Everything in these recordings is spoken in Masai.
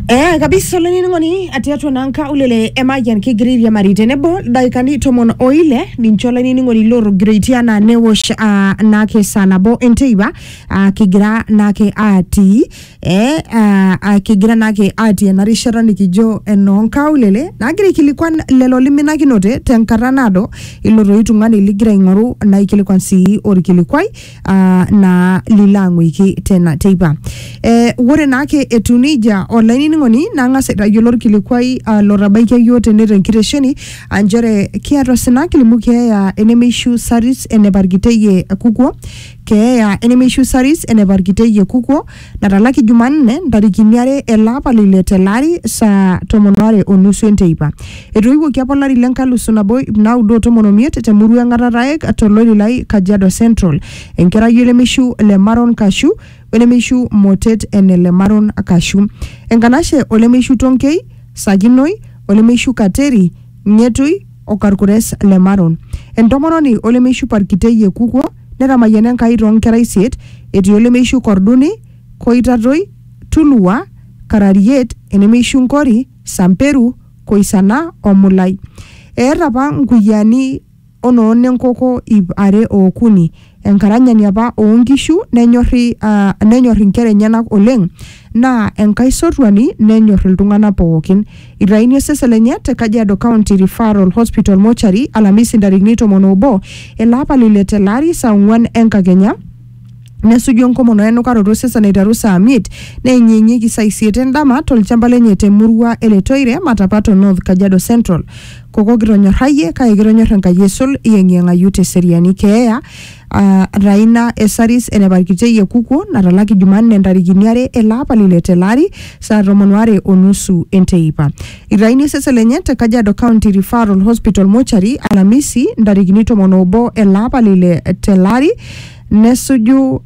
Eh, kabisa olainining'oni atii atua naa nkaulele e Mayian kigira airiamari tenebo ildaikani tomon o ile ninche olainining'oni lootogiroitie anaa newosh ah, naake saa nabo enteipa ah, kigira naake atii eh, ah, ah, kigira naake atii ena rishata nikijo enoo nkaulele nagira aikilikuan lelo liminakinote tenkata naado ilo toi tung'ani ligira aing'oru naikilikuan sii orkilikuai uh, naa lilang'uiki tena teipa eh, ore naake etu nejia olainining'oni nang'as aitayiolo orkilikuai uh, lotabaikia yioo tene tenkitesheni aa nchere kiata osina kilimu keeya enemeishu saris eneparkiteyie kukuo keeya enemeishu saris eneparkiteyie kukuo natalaki Jumanne ntarikini are ele apa le ile tele ari saa tomon are o nusu enteipa. Etoiwuoki apa olari le nkalusu nabo ip naudo o tomon omiet te murua e Ng'atataek to Loililai, Kajiado Central, enkerai o lemeishu le Maron Kashu o lemeishu Motet ene le Maron Kashu, Enkanashe o lemeishu Tonkei, Sakinoi, o lemeishu Kateri, Ng'etui o Karkures le Maron, entomononi o lemeishu Parkitei e Kukwo, Netamayiana Enkai too nkera isiet, etii olemeishu Korduni, Koitatoi, Tulua, Karariet, enemeishu Nkori, Samperu, Koisana o Mulai. Eeta apa nkuyiani o noo nenkoko iip are o okuni. Enkaranyani apa oo nkishu nenyorri nenyor inkera enyenak oleng naa enkaisotuani nenyor iltung'ana pooki. Eitayuni osesen lenye te Kajiado County Referral Hospital Mortuary Alamisi ntarikini tomon obo ele apa le ile tele ari saa ong'uan enkakenya nesuju enkomono enukaroto osesen aiteru saa miet neenyeenyieki saa isiet endama tolchamba lenye te murua e Letoire Matapato North Kajiado Central. Koko kitonyorrayie kake kitonyorr Enkai aisul iyeng'iyeng'ayu te seriani keeya uh, Raina Esaris eneparkitie Yekukuo natalaki Jumanne ntarikini are ele apa lile tele ari saa tomon are o nusu enteipa. Itayuni osesen lenye te Kajiado County Referral Hospital Mortuary Alhamisi ntarikini tomon obo ele apa lile tele ari nesuju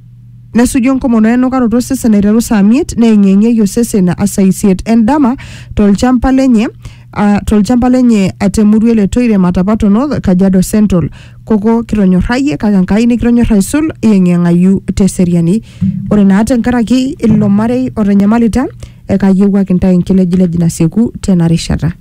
nesuju enkomono enukaroto osesen aiteru saa miet neeng'ieng'ieki osesen saa isiet endama tolchamba lenye ah, tolchamba lenye atemurua ele toire matapato north kajiado central koko kitonyorrayie kake enkai nikitonyorra aisul iyeng'iyeng'ayu teseriani ore naa tenkaraki ilo marei otanyamalita ekayiewuaki intae enkilejilej nasieku tena rishata